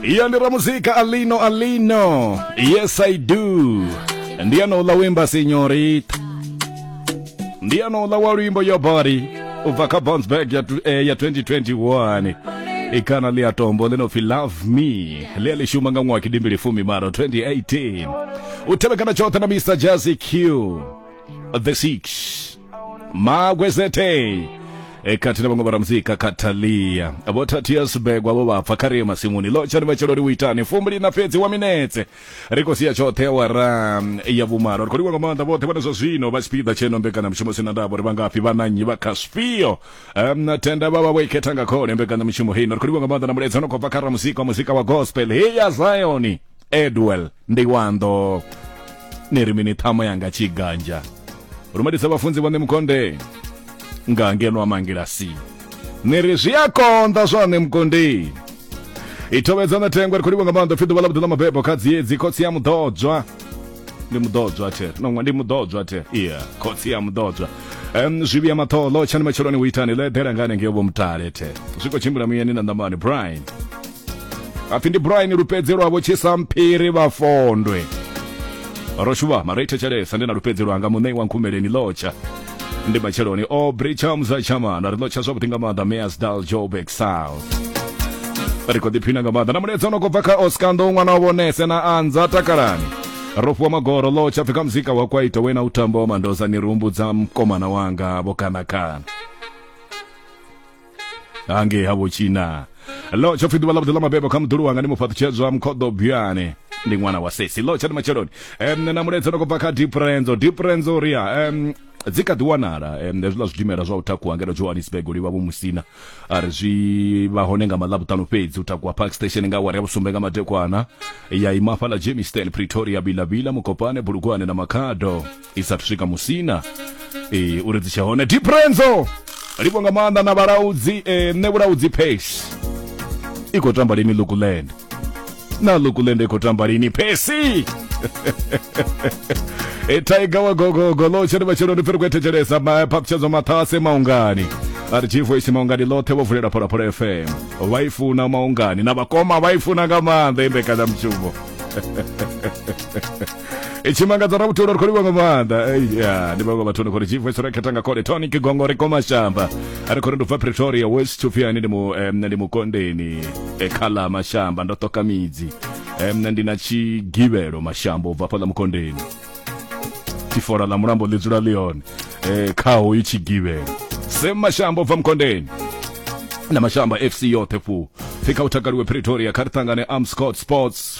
iyo ndi ramuzika alino alino yes i do ndi anouḽa wimba senyorita ndi anouḽa wa luimbo yo body u bva kha bouncebag ya, tu- eh, ya 2021 ikana ḽi a tombo ḽi no pfi love me ḽi a ḽi shuma nga ṅwaha kidimbili fumi malo 2018 u tevhekana tshoṱhe na mr jazzy q the six magwezete e kati na vhaṅwe vharamuzika katalia vho thathiya sibegwa vho vhapfa kha riye masimuni lotsha ni matshelo ri u itani fumbili na fhedzi wa minetse ri khou sia tshoṱhe awara mm, ya vhumalo ri khou livha nga maanḓa vhoṱhe vhane zwa zwino vha tshipiḓa tsheno mbekanyamushumo sina ndavha uri vha ngafhi vha na nnyi vha kha zwifhio um, na tenda vha vha vho ikhetha nga khole mbekanyamushumo heino ri khou livha nga maanḓa na mulaedza no khou bva kha ramuzika wa muzika wa gospel heya zioni edwell ndi wando ni ri mini ṱhamo yanga tshiganja rumelisa vhafunzi vhone mukonde nga ngeno a mangilasi ni ri zwi a konḓa zwone mukondeni i thovhedza na thengwe ri khou livha nga maanḓa pfi ḓuvha ḽa vhuḓi ḽa mabebo kha dziedzi khotsi ya muḓodzwa ndi muḓodzwa the no ndi muḓodzwa the iya khotsi ya muḓodzwa um, zwi vhuya maṱholo tshani matsheloni u itani ḽo eḓela nga hanengeo vho mutale the zwi khou tshimbila muyani na ṋamani brian apfi ndi brian lupedze lwavho tshisa mphiri vhafondwe ro shuvha mara ithetshelesa ndi na lupedze lwanga muṋei wa nkhumeleni lotsha ndi matsheloni o bricham za chamana ri lotsha zwavhuḓi nga maanḓa measdal joburg south ri khou ḓiphina nga maanḓa na muledza ono khou bva kha oscando ṅwana wa vhonese na anza takalani ro fhiwa magoro lo tsha pfi kha muzika wa kwaito wena u tamba wa mandoza ni ri humbudza mkomana wanga vho kanakana hangei ha vhotshina lo tsho pfi ḓuvha ḽavhuḓi ḽa mabebo kha muḓulu wanga ndi mufhaṱutshedzwa mukhoḓo buyane ndi ṅwana wa sesi lo tsha ndi matsheloni um na muledza no khou bva kha diprenzo diprenzo ria um dzi kha ḓi wanala um hezwiḽa zwidimela zwa u takuwa ngeno johannesburg u livha vho musina a ri zwi vha hone nga maḽavhuṱanu fhedzi u takuwa park station nga awara ya vhusumbe nga madekwana ya ima hafhaḽa jamestown pretoria bilavila mukopane bulugwane na makhado i sa swika musina e, uri dzi tshe hone diprenzo livho nga maanḓa na vhalaudzi e, nṋe vhulaudzi pace i khou tamba lini lukuland na lukuland i khou tamba lini pesi e tiger wa gogogo lo tshiri matshelo ndi pfiri kuethetshelesa phaphutshedzo maṱhase maungani a ri chifu isi maungani ḽoṱhe vho vulela pholaphola fm vha i funa maungani na vhakoma vha i funa nga maanḓa i mbekanyamushumo Eh, chimangadza ra vutolo ri khou livha nga maanḓa Eh, ya ndi vhaṅwe vhathuni khori chief wesera khetha nga khole tonic gongo ri komashamba a ri khori ndi bva pretoria west tshupfiani ndi mu eh, mna ndi mukondeni eh, khala mashamba ndo ṱoka midzi eh, mna ndi na tshigivhelo mashamba u bva fhaḽa mukondeni tifora ḽa mulambo ḽi dzula ḽi hone eh, kha hoyu tshigivhelo sem mashamba u bva mukondeni na mashamba fc yoṱhe fu pfhi kha u takaliwe pretoria kha ri ṱangane amscot sports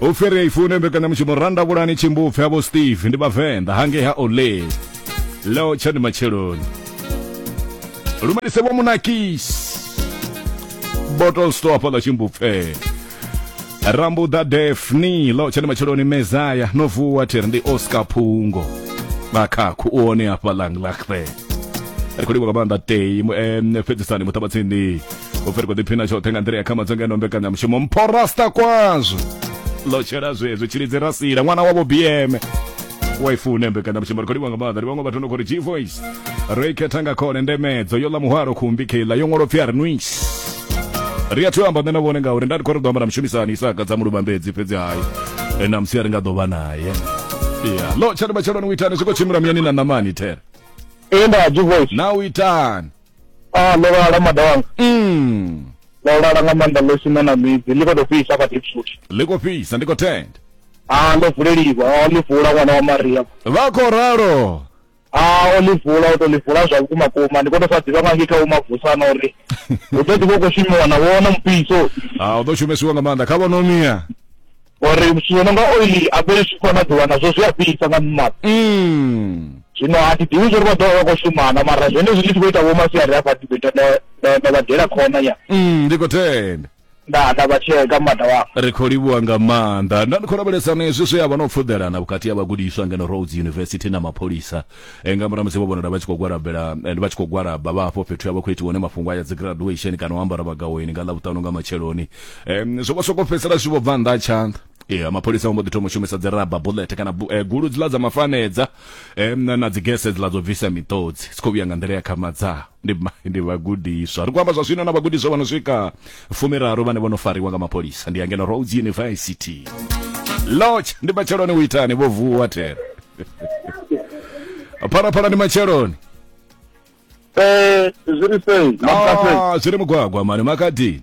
u fhiri ya ifune mbekanyamushumo randa vhulani tshimbupfe havho steve ndi vhavenḓa hangei ha ole leo tsha ndi matsheloni lumelise vho munakis bottle store fhaḽa tshimbupfe rambuḓa defni leo tsha ndi matsheloni mezaya no vuwa thiri ndi oscar phungo vhakhakhu u one hafhaḽa nglahre ri khou livha nga maanḓa tei fhedzisani muṱabatsindi u fhiri kho ḓiphina tshoṱhe nga nḓila ya kha madzonga eno mbekanyamushumo mphorasta kwazwo ḽo tshela zwezwo tshilidzi rasila ṅwana wavho bm waifune mbekanyamushumo ri khou livha nga maanḓa ndi vhaṅwe vhathu no khou ri g voice ro i khetha nga khone ndemedzo yo ḽa muhwalo khumbi kheiḽa yo ṅwalo pfi a ri nwis ri a thu amba nṋe na vhone ngauri nda ndi khou ri ḓo amba na mushumisani isaka dza muluvhambedzi fhedzi hayi e, na musi a ri nga ḓo vha naye ya lo tshani matsheloni u itani zwi khou tshimbila muyani na namani there e nda g voice na u itani a ndo lala mada wanga mm. ndo lala nga maanḓa ḽo sina na midzi ḽi khou tou fhisa kha dipsuthi ḽi khou fhisa ndi khou tenda a ḽo vuleliwa a ḽi vula ṅwana wa maria vha khou ralo a o ḽi vula o tou ḽi vula zwa vhukuma kuma ndi khou tou sa ḓivha nga ngei kha u mavusana uri hu ḓo ḓi vha u khou shumiwa na vhona mupiso a u ḓo shumesiwa nga maanḓa kha vhonomia ngori zwithu zwo no nga oili a fheli zwi khou na ḓuvha nazwo zwi a fhisa nga mmaḓi mm. zwino a thi ḓivhi zwori vha ḓovha vha khou shumana mara zwenezwi ndi tshi khou ita vho masiari hafha ndi ḓo ita nda vha dela khona ya mm, ndi khou tenda nda nda vha tsheka mmada wao ri khou livhuwa nga maanḓa nda ndi khou lavhelesana hezwi zwe ya vha no pfuḓelana vhukati ha vhagudiswa ngeno roads university na mapholisa e, nga murahu musi vho vhonala vha tshi khou gwalabela and vha tshi khou gwalaba vha hafho fhethu ya vha khou itiwa hone mafhungo a ya dzi graduation kana u ambara vhagaweni nga ḽavhuṱanu nga matsheloni um zwo vha soko fhedzisela zwi vho bva nnḓa ha tshanḓa ee mapholisa vho mbo ḓi thoma u shumisa dzi raba bullet kana bu- eh, gulu dziḽa dza mafanedza um na dzi gese dziḽa dzo bvisa miṱodzi dzi khou vhuya nga nḓila ya khamadzaho ndi ndi vhagudiswa ri khou amba zwa zwino na vhagudiswa vha no swika fumiraru vhane vho no fariwa nga mapholisa ndi angena roads university lodge ndi matsheloni u itani vho vuwa thera phalaphala ndi matsheloni Eh, zwi ri sei makase Ah, zwi ri mugwagwa mani makadini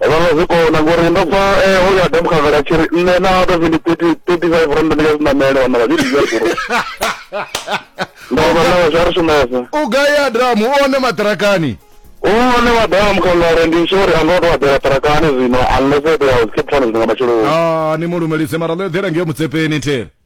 vhaṅwe zwi kona ngori ndo pfa eh, uyo adamu khagala a tshi ri nṋe na out of ndi thirty five rand ndi nga zwi namele wana vha zwi dzhia guru ndo vha na zwa ri shumesa u gai adamu u one maṱirakani one adamu khagala ndi sure a ngo to adela tarakani zwino unless it was keep trying zwinga matshelo ah ni mu lumelise mara ḽo eḓela ngeo mutsepeni thele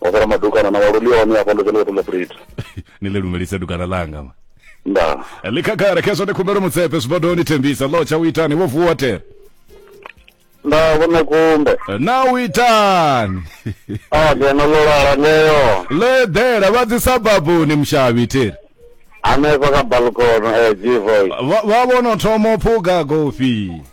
wa sala madukana na waluli one hafha ndo dzhena vha ṱoḓa breed ni ḽi lumelise dukana ḽanga ma nda ḽi khagare khezwo ni khumbelo mutsepe zwibodoni thembisa ḽo tsha u itani vho vuwa tere nda vhona kumbe na u itani a ngeno ḽo lala ngeyo ḽo eḓela vha dzi sababuni mushavhi tere hanefha kha balkono eh jivoy vha vha vho no thoma u phuga gofi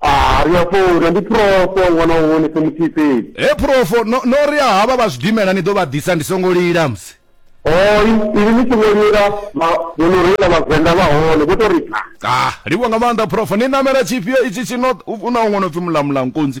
Ah, ri a funa ndi profo ṅwana wa wone se muthihi fhedzi he phurofo no no ri a havha vha zwidimela ni ḓo vha ḓisa ndi songo lila musi oi ivi ni songo lila vhono reila vhavenḓa vha hone vho to ri pha ah livho nga maanḓa phurofo ni namela tshifhio itshi tshi no u na huṅwe no pfi mulamulankunzi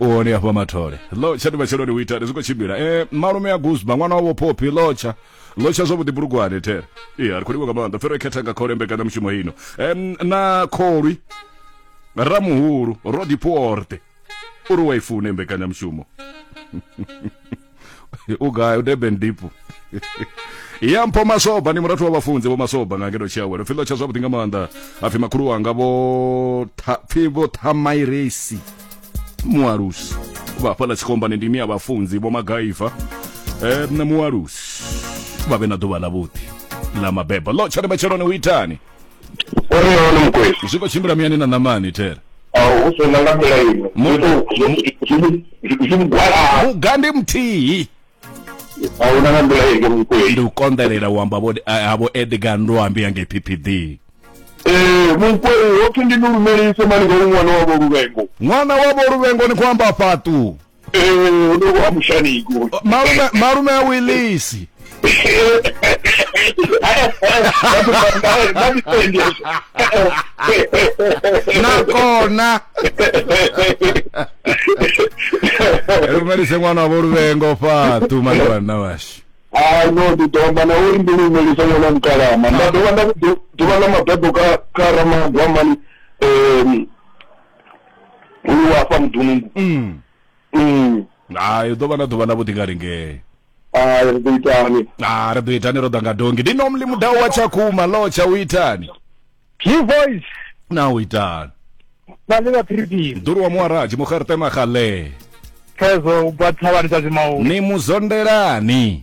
u hone afho mathole lotsha ndi matsheloni u itani zwi khou tshimbila e malume ya guzba ṅwana wavho phophi lotsha lotsha zwavhuḓi bulugwane there ee a ri khou livha nga maanḓa fero khetha nga khole mbekanyamushumo ino em na kholwi ramuhulu rodiporte uri wa i fune mbekanyamushumo u gai u durban deep ya mpho masoba ni murathu wa vhafunzi vho masoba nga ngeno tshiawelo pfhi ḽo tsha zwavhuḓi nga maanḓa apfhi makhulu wanga vho pfhi vho thamairesi mualusi vha fhala tshikombani ndi ni ya vhafunzi vho magaiva um mualusi vha vhe na ḓuvha ḽavhuḓi ḽa mabebo ḽo tsha ri matsheloni u itani uri hone mukwe zwi khou tshimbila muyani na ṋamani there hu sina nga nḓila ino zwigwalaa muga ndi muthihi ahuna nga nḓila ino mukwe ndi u konḓelela u amba vho- a- a vho edgar ndoambi yange ppd ee mukwe hothi ndi ni lumelise mani nga ṅwana wavho luvengo ṅwana wavho luvhengoni khou amba fhaṱu Eh, no wa mushani go. Malume malume a Willisi. nakona lumelise ṅwana wa vholuvengo fatu maliwanna washu a no ndi ḓo amba na uri ndi lumelisa ṅwana mukalama nda dovha nda ḓuvha ḽa mabedo kha kha ramagwamani um Uri wa fha mudungu. Mm. Mm. Hai ḓo vha na ḓuvha na vhuḓi nga ringee. Ah, ri ḓo itani. Ah, ri ḓo itani ro ḓa nga dongi. Ndi nomli mudau wa Tshakhuma lo tsha u itani. Ki voice. Na u itani. Na le ba phiripiri. Nduru wa muaraji mugertema gale. Phezo u bwa thavhani dza zimau. Ni muzondelani.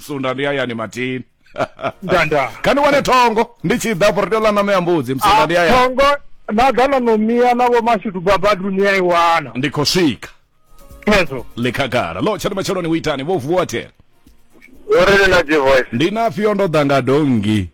sunda ndi hayani matini ndanda kha ni wane thongo ndi tshi ḓa afho ri tea u ḽa ṋama ya mbudzi musanda ndi hayani thongo na ḓa na nomiya na vho mashudu babadu ni a i wana ndi khou swika hezwo ḽi khagala lo tshani matsheloni u itani vho vuwa thera uri ni na dzi voice ndi nafhio ndo ḓa nga dongi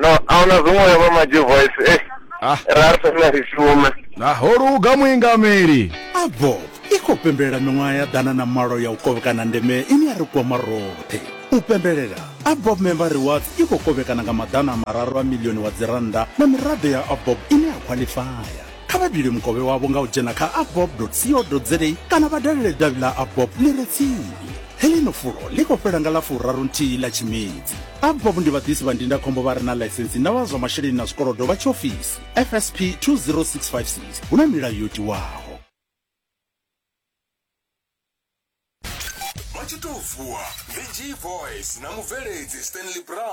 no ahuna zwiṅwe ya vha maji voice eh ah. ra fena ri shume naho luga muingameli abo i khou pembelela miṅwaha ya ḓana na malo ya u kovhekana ndeme ine ya ri kwama roṱhe u pembelela abob member rewards i khou kovhekana nga maḓana a mararu a milioni wa dzirannda na miraḓo ya abob ine ya khwalifaya kha vha dule mukovhe wavho nga u dzhena kha abob co za kana vha dalele davhi ḽa abob ḽi re tsini heḽino fulo ḽi khou fhela nga ḽa furaru nthihi ḽa tshimedzi abob ndi vhaḓisi vha ndindakhombo vha re na ḽaisensi na vha zwa masheleni na zwikolodo vha tshiofisi fsp 20656 hu na milayo yo tiwaho vha tshi tou vuwa ndi g voice na mubveledzi stanley brown